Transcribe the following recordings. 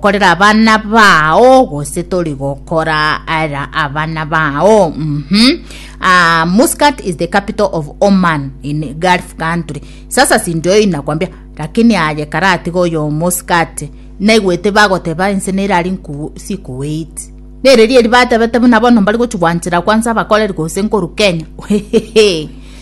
Korera abana bao gose tori gokora era abana bao mhm uh, Muscat is the capital of Oman in Gulf country sasa sindoi nakwambia lakini aye karatiga oyo Muscat naigwete bagoteba ense nerari nku si Kuwait nereri eri batebete buna bono mbari gochigwanchera kwanza abakoreri gose nkoru Kenya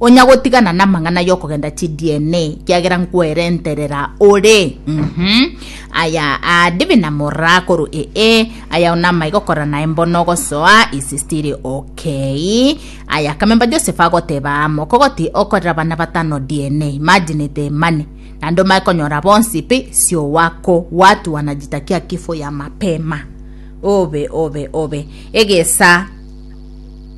Onya gotigana namang'ana yokogenda chi DNA kiagera nkwerenterera ore mhm aya adibi na morra koru ee aya ona amaiga okora naye mbono ogosoa is still okay aya kamemba Joseph agoteba amo kogoti okorera bana batano DNA imagine the money na ndomai konyora bonsi pi sio wako watu wanajitakia kifo ya mapema obe obe obe egesa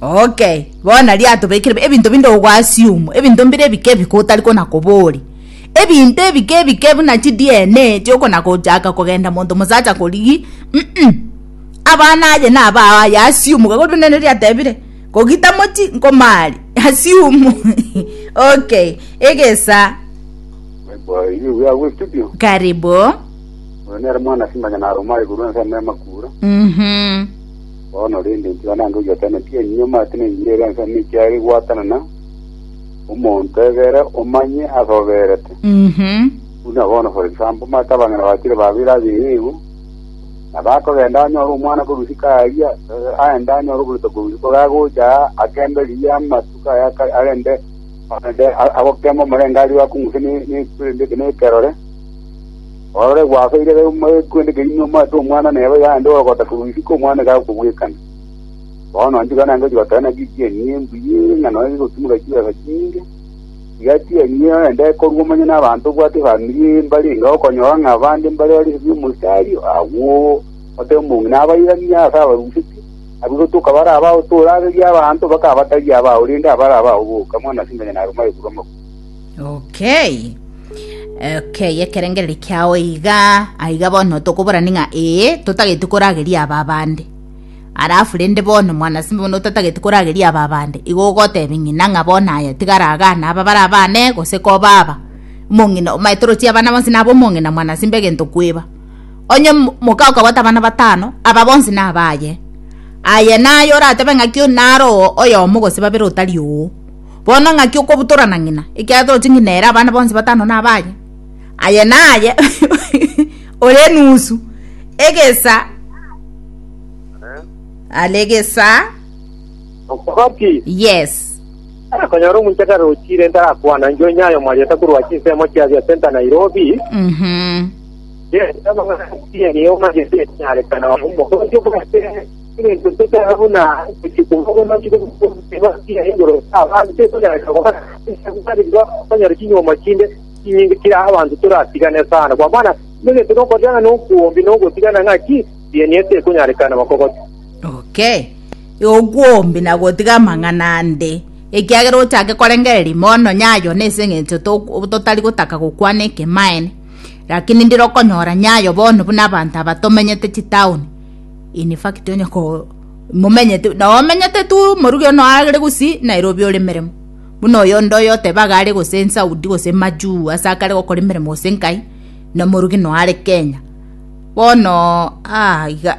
Okay, bono riatobekire ebinto binde ogwasium, ebinto mbire ebike ebike otari kona kobori. Ebinto ebike ebike buna chi DNA tiokona kochaka kogenda monto mosacha korigi. Mm, mm. Abana aye na abao aye asium gakori buna neri atebire. Kogita mochi nkomari. Asium. okay. Egesa. Boy, you we are with studio. Karibu. Nere mwana simanya na Roma iguru nsa mema kura. Mhm. Bono rende ntiga nange ogiataneti enyunyama ase nengira ere ense nechiare gwatanana, omonto egere omanye ase oberete. Mhm. Buna bono for example, omanyete abang'ina bachire babere ase eyeigo, na bakogenda anyore omwana korwa isiko aria, eh, aende anyore oborito korwa isiko, iga agocha aa, akende riria amatuko aya aka- arende arende a- agokema omorenge aria akong'use ne- ne- ne- nekerore, Orore gwaka eira ya omogwende keria nomoate omwana neba iga aande ogogota korwa isiko omwana iga agokobwekana. Bono nchika naende gochigotera naki echieni embuya ere ng'a nonya gegotimoka chibesa chinyinge, tiga chieni eye ogende ekorwa omonyene abanto obwate efamiri eye mbare enga okonyora ng'a abande mbare bare esegi y'omositari agwo otebe omong'ina abairanie ase abarusetie, abwo gotoka bare abao toraberie abanto bakaba batari abao rende abare abao boka, mwanase imenya naro maegure amabuya. Okay. Okay, ekerengereri kiao iga aiga bono tokoborani ng'a ee totageti korageria aba abande arafu rende bono mwana simba bono otatageti korageria aba abande igo ogotebia ng'ina ng'a bono aya tigaragane aba bara abane gose koba aba omong'ina omaete torochie abana bonsi naba omong'ina mwana simba egento kweba onye mo- moka okabwata abana batano aba bonsi nabaye aye naye oratebe ng'aki o- naro oo oyomo gose babere otari oo Bono ng'aki okobutorana ng'ina, ekiagera toroche ng'ina ere abana bonsi batano nabaye? Aye naye ore enusu egesa are egesa Okogoti. yes Konyora omonchakare ochire ntarakwana njo nyayo mwarieta korwa chinsemo chia bia Center Nairobi. Mhm. Yes, amang'ana niyo magete nyarekana. Omogosi obwate Egento tokeba buna gochia koba oboronge bw'okoba ekiina igoro y'abanto ekonyoreka koba ensa gokariria okonyora chinyuoma chinde chinyinge chiria abanto toratigane sana. Kwa mana, egento nokorera ng'a nokwombi na ogotigana ng'aki, rienie tekonyarekana bakogote. Okay. Okwombi na gotiga amang'ana ande, ekiagera ochake korengereria ime o nonya ayo nese eng'encho to- totari gotaka gokwana ekemaene. Rakini ndire okonyora nyayo bono buna abanto aba tomenyete chitaoni, In fact onye ko momenyete na omenyete tu moruge ono are gusi Nairobi ore meremo buna oyo onde oyo oteba iga are gose Saudi gose majuu ase akare gokora emeremo gose nkai na moruge no are Kenya bono ah iga